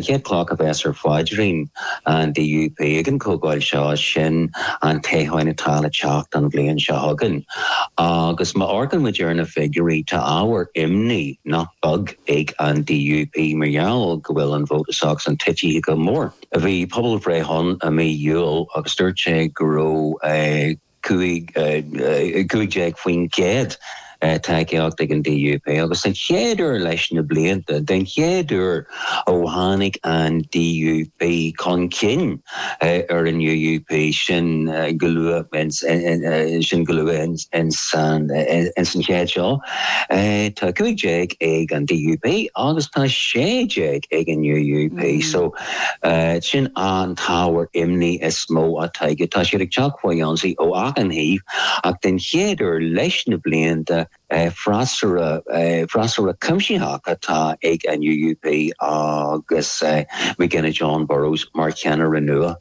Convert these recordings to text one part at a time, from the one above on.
Chéad cloch a bheas ar pháidrín an DUP ag an Chomhdháil seo sin an toghchán atá le teacht an bhliain seo chugainn. Agus má amharcann muid ar na figiúirí tá ábhar imní nach beag ag an DUP mar gheall go bhfuil an vóta s'acusan ag titim go mór. Bhí pobalbhreith ann i mí Iúil agus dúirt sé go raibh 15% tacaíocht ag an DUP agus den chéad uair leis na blianta, den chéad uair ó tháinig an DUP chun cinn ar an UUP, sin go luath ins an chéad seo, tá 15 ag an DUP agus tá 16 ag an UUP. Sin an t-ábhar imní is mó atá acu. Tá siad ag teacht faoi ionsaí ó achan thaobh ach den chéad uair leis na blianta freasúra, freasúra cuimsitheach atá ag an UUP agus Jon Burrows mar cheannaire nua.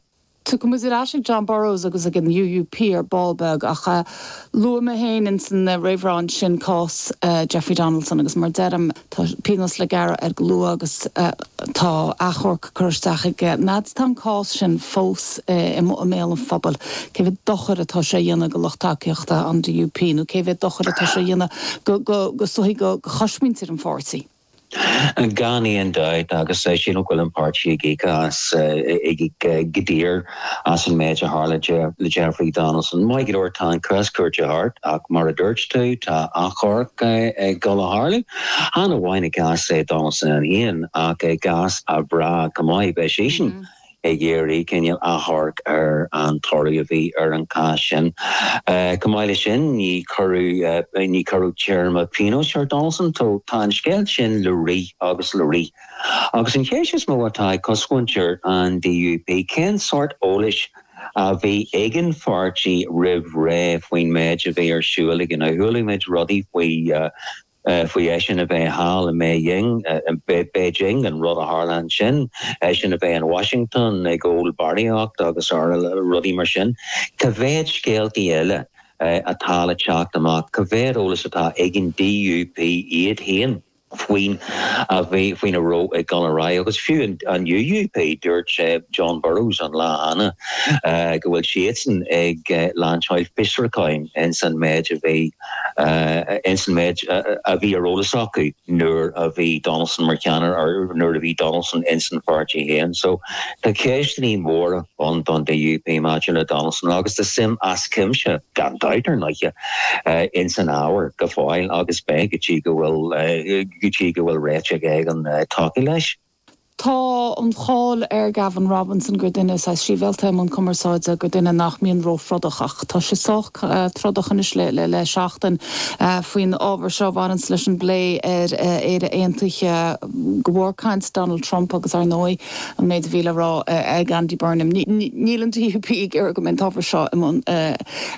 Tiocfaimid ar ais ag Jon Burrows agus ag an UUP ar ball beag ach luaigh mé féin ins an réamhrá ansin cás Jeffrey Donaldson agus mar deirim tá pionós le gearradh air go luath agus tá achomharc curtha isteach aige. Tá an cás sin fós i mbéal an phobail, cé mhéad dochair atá sé a dhéanamh do lucht tacaíochta an DUP nó cé mhéad dochair atá sé a dhéanamh do, is dóigh, do chosmhuintir an pháirtí. Gan aon dabht agus sílim go bhfuil an páirtí ag íoc as, ag íoc go daor as an méid a tharla le Jeffrey Donaldson. Maith go leor tá an cás cúirte thart ach mar a dúirt tú tá achomharc ag dul a tharlú, chan amháin i gcás Donaldson é féin ach i gcás a mhná chomh maith, beidh sise. ag iarraidh cineál achomhairc ar an toradh a bhí ar an cás sin. Chomh maith leis sin, ní cuireadh, ní cuireadh téarma pionóis ar Donaldson. Tá an scéal sin le rith agus le rith. Agus an cheist is mó atá ag cosmhuintir an DUP, cén sórt eolais a bhí ag an pháirtí roimh ré faoin méid a bhí ar siúl aige. Chualaidh muid rudaí faoi. faoi eisean a bheith thall i mBeijing, Beijing, an rud a tharla ansin, eisean a bheith in Washington ag ól barraíocht agus rl, rudaí mar sin. Cá mhéad scéaltaí eile atá le teacht amach, cá mhéad eolas atá ag an DUP iad féin faoin a bhí, faoin a raibh ag dul ar aghaidh agus fiú an UUP, dúirt Jon Burrows an lá cheana go bhfuil siadsan ag lainseáil fiosrucháin ins an méid a bhí. ins an méid a bhí ar eolas acu nuair a bhí Donaldson mar cheannaire or nuair a bhí Donaldson ins an pháirtí féin. So tá ceisteannaí móra ann don DUP maidir le Donaldson agus tá suim as cuimse, gan dabht ar ndóighe, ins an ábhar go fóill agus beidh go dtí go bhfuil, go dtí go bhfuil réiteach éigin tagtha leis. Tá an cháil ar Gavin Robinson gur duine saghas sibhialta i mbun cumarsáide, gur duine nach mbíonn ró-throdach. Ach tá sé sách trodach anois le seachtain faoin ábhar seo a bhaineanns leis an bplé ar Éire Aontaithe. De bharr caint Donald Trump agus, ar ndóigh, an méid a bhí le rá ag Andy Burnham. Níl an DUP ag iarraidh go mbeidh an t-ábhar seo i mbun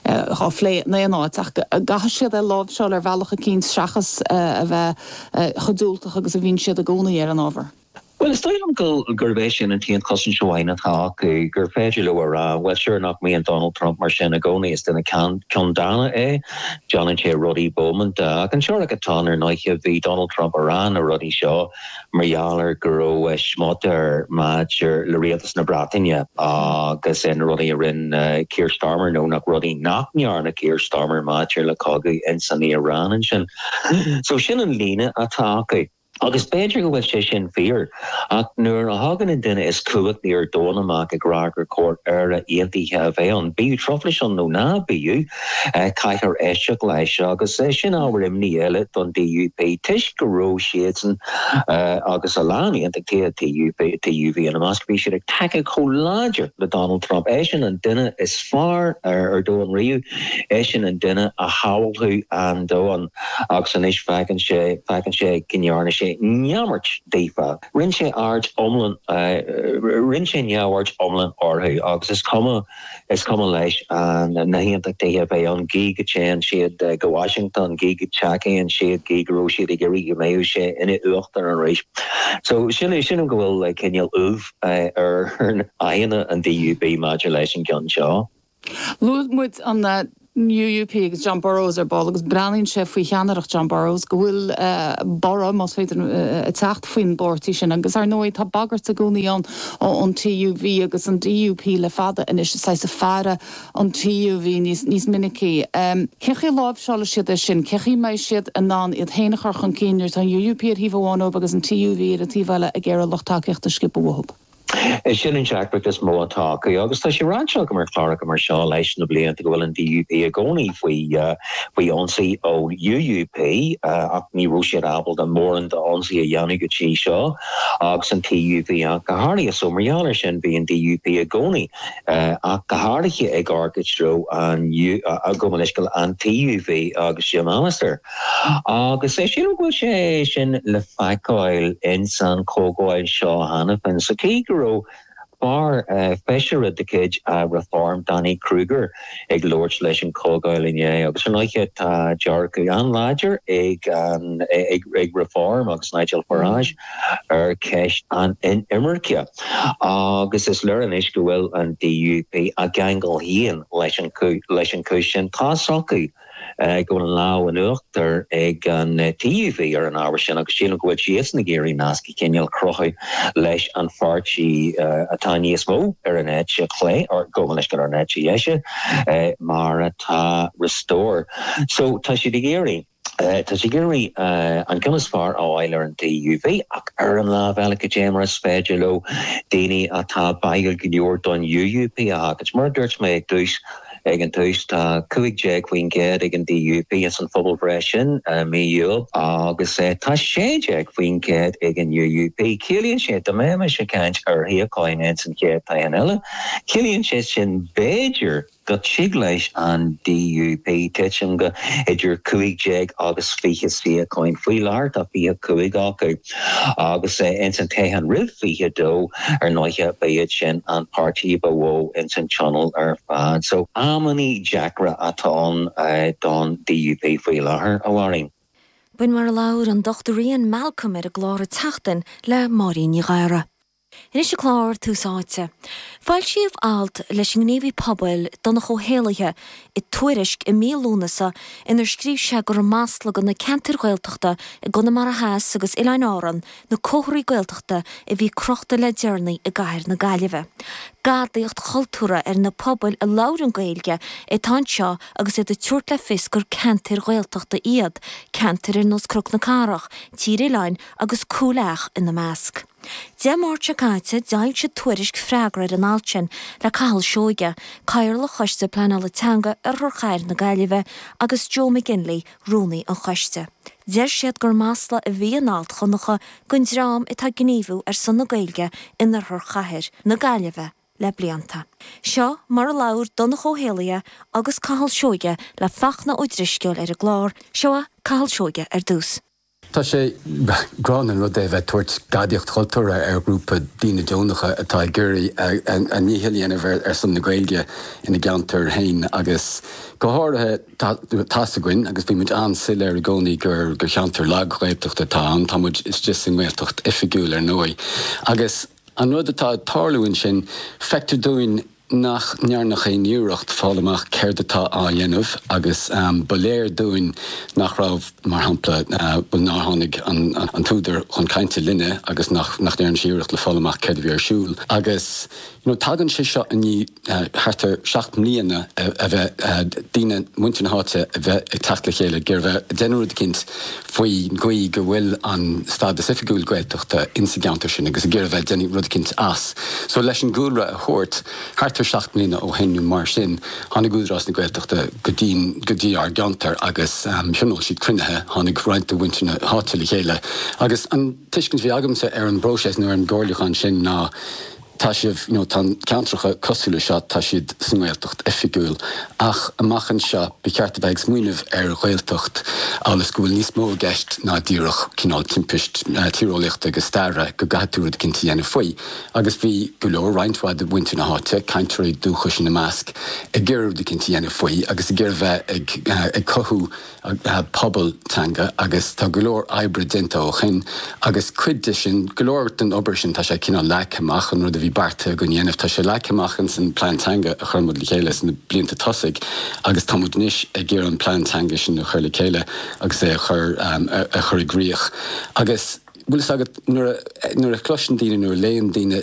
á phlé in aon áit ach an gcaithfidh siad é a láimhseáil ar bhealach eicínt seachas a bheith chomh diúltach agus a bhíonn siad i gcónaí ar an ábhar. Bhuel, is dóigh liom gurb é sin an t-aon chosaint amháin atá acu, gur féidir leo a rá, bhuel, sure, nach mbíonn Donald Trump mar sin i gcónaí, is duine ceanndána é, déanann sé rudaí bómánta. Ach an teoiric atá ann ar ndóiche, bhí Donald Trump ag rá na rudaí seo mar gheall ar go raibh smut air maidir le Rialtas na Breataine agus na rudaí a rinne Keir Starmer, nó na rudaí nach ndearna Keir Starmer maidir le cogadh ins an Iaráin ansin. So sin an líne atá acu. Agus b'fhéidir go bhfuil sé sin fíor, ach nuair a thagann an duine is cumhachtaí ar domhan amach ag rá gur chóir Éire Aontaithe a bheith ann, bíodh truflais ann nó ná bíodh, caithfear éisteacht leis. Agus sin ábhar imní eile don DUP toisc go raibh siadsan agus a lán aontachtaithe, TUV ina measc, bhí siad ag tacú chomh láidir le Donald Trump. Eisean an duine is fearr ar domhan riamh. Eisean an duine a shábhálfadh an domhan agus anois féachann sé, féachann sé go ndearna sé neamart daofa. Rinn sé aird iomlán, rinn sé neamhaird iomlán orthu agus is cuma, is cuma leis na hAontachtaithe a bheith ann gidh go dtéann siad go Washington, gidh go dtacaíonn siad, gidh go raibh siad ag iarraidh go mbeadh sé ina Uachtarán arís. So sin, sin é go bhfuil cineál ubh ar aghaidheanna an DUP maidir leis an gceann seo. Luaigh muid an UUP agus Jon Burrows ar ball agus breathnaíonn sé faoi cheannaireacht Jon Burrows go bhfuil borradh, más féidir, ag teacht faoin bpáirtí sin agus ar ndóigh tá bagairt i gcónaí ann ón TUV agus an DUP le fada anois saghas ag faire an TUV níos minicí. Cé chaoi a láimhseálfaidh siad é sin? Cé chaoi a mbeidh siad in ann iad féin a chur chun cinn nuair atá an UUP ar thaobh amháin dóibh agus an TUV ar an taobh eile ag iarraidh lucht tacaíochta a sciobadh uathu? Is é sin an deacracht is mó atá acu agus tá sé ráite agam ar chláracha mar seo leis na blianta go bhfuil an DUP i gcónaí faoi, faoi ionsaí ó UUP ach ní raibh siad ábalta mórán d'ionsaí a dhéanamh go dtí seo agus an TUV ach go háirithe. So mar gheall ar sin bhí an DUP i gcónaí ach go háirithe ag amharc i dtreo an, gabh mo leithscéal, an TUV agus Jim Allister. Agus é sin a bhfuil sé sin le feiceáil ins an chomhdháil seo cheana féin sa mhéid go raibh fear feisire de chuid Reform, Danny Kruger, ag labhairt leis an chomhdháil inné agus ar ndóiche tá dearcadh an-láidir ag Reform agus Nigel Farage ar cheist na hinimirce agus is léir anois go bhfuil an DUP á gceangal féin leis an chúis sin. Tá's acu go bhfuil an lámh in uachtar ag an TUV ar an ábhar sin agus sílim go bhfuil siadsan ag iarraidh nasc de chineál a chruthú leis an pháirtí atá níos mó ar an eite chlé, or go bhfuil leis ar an eite dheise mar atá Restore. So tá siad ag iarraidh, tá siad ag iarraidh an ceann is fearr a fháil ar an TUV ach ar an lámh eile cad é mar is féidir leo daoine atá báúil go leor don UUP a thabhairt. Mar a dúirt mé ag tús, Ag an tús tá 15% ag an DUP ins an phobalbhreith sin i mí Iúil agus tá 16% ag an UUP. Ciallaíonn sé, dá mbeimis ag caint ar shuíocháin ins an chéad toghchán eile, ciallaíonn sé sin b'fhéidir go dtig leis an DUP titim go hidir 15 agus 20 suíocháin. Faoi láthair tá 25 acu. Agus ins an Tionól roimh 22, ar ndóiche, ba iad sin an páirtí ba mhó ins an Tionól ar fad. So, amannaí deacra atá ann don DUP faoi láthair, a Mháirín. B'in mar a labhair an Dr Ian Malcolm ar an gclár An tSeachtain le Máirín Ní Ghadhra. Anois chuig an gclár, Tús Áite. Foilsíodh alt leis an ngníomhaí pobail, Donncha Ó hÉallaithe, i Tuairisc i mí Lúnasa inar scríobh sé gur masla do na ceantair Ghaeltachta i gConamara Theas agus Oileáin Árann na comharthaí Gaeltachta a bhí crochta le deireanaí i gcathair na Gaillimhe. Gadaíocht chultúrtha ar na pobail a labhrann Gaeilge atá anseo agus iad ag tabhairt le fios gur ceantair Ghaeltachta iad, ceantair ar nós Cnoc na Cathrach, Tír Oileáin agus Cúil Each ina measc. Dé Máirt seo caite, d'fhoilsigh Tuairisc freagra ar an alt sin le Cathal Seoige, Cathaoirleach Choiste Pleanála Teanga Oirthear Chathair na Gaillimhe agus Joe McGinley, Rúnaí an Choiste. Deir siad gur masla a bhí in alt Dhonncha don dream atá ag gníomhú ar son na Gaeilge in Oirthear Chathair na Gaillimhe le blianta. Seo mar a labhair Donncha Ó hÉallaithe agus Cathal Seoige le Fachtna Ó Drisceoil ar an gclár, Seo Cathal Seoige ar dtús. Is gránna an rud é a bheith ag tabhairt gadaíocht chultúrtha ar ghrúpa daoine deonacha atá ag iarraidh a ndícheall a dhéanamh ar son na Gaeilge ina gceantair féin agus go háirithe tá's againn agus bhí muid an-soiléir i gcónaí gur cheantar lag Ghaeltachta atá ann, tá muid istigh sa nGaeltacht oifigiúil ar ndóigh agus an rud atá ag tarlú ansin feictear dúinn nach ndearnadh aon iarracht a fháil amach céard atá á dhéanamh agus ba léir dúinn nach raibh, mar shampla, bhuel nár tháinig an t-údar chun cainte linne agus nach ndearna sé iarracht le fáil amach céard a bhí ar siúl agus you know tagann sé seo i ndiaidh thart ar seacht mbliana a bheith daoine, muintir na háite a bheith ag teacht le chéile ag iarraidh a bheith ag déanamh rud eicínt faoin gcaoi go bhfuil an stádas oifigiúil Gaeltachta insa gceantar sin agus ag iarraidh a bheith ag déanamh rud eicínt as. So leis an gcúlra a thabhairt, thart ar seacht mbliana ó shoin nó mar sin, tháinig Údarás na Gaeltachta go dtí, go dtí ár gceantar agus thionól siad cruinnithe, tháinig roinnt de mhuintir na háite le chéile agus an tuiscint a bhí agamsa ar an bpróiseas nó ar an gcomhairliúchán sin ná, Tá sibh, nó tá ceantracha cosúil le seo, tá siad sa nGaeltacht oifigiúil, ach amach anseo ba cheart a bheith ag smaoineamh ar Ghaeltacht amhail is go bhfuil níos mó i gceist ná díreach cineál timpiste tíreolaíochta agus staire go gcaithfidh tú rud eicínt a dhéanamh faoi. Agus bhí go leor, roinnt mhaith de mhuintir na háite, cainteoirí dúchais ina measc, ag iarraidh rud eicínt a dhéanamh faoi agus ag iarraidh bheith ag cothú pobal teanga agus tá go leor oibre déanta ó shin agus cuid de sin, go leor den obair sin tá sé cineál leagtha amach, an rud a bhí beartaithe againn a dhéanamh tá sé leagtha amach insan bplean Teanga a chuir muid le chéile sna blianta tosaigh agus tá muid anois ag iarraidh an Plean Teanga sin a chur le chéile agus é a chur a chur i gcrích agus bhfuil fhios agat nuair a nuair a chloiseann daoine, nuair a léann daoine.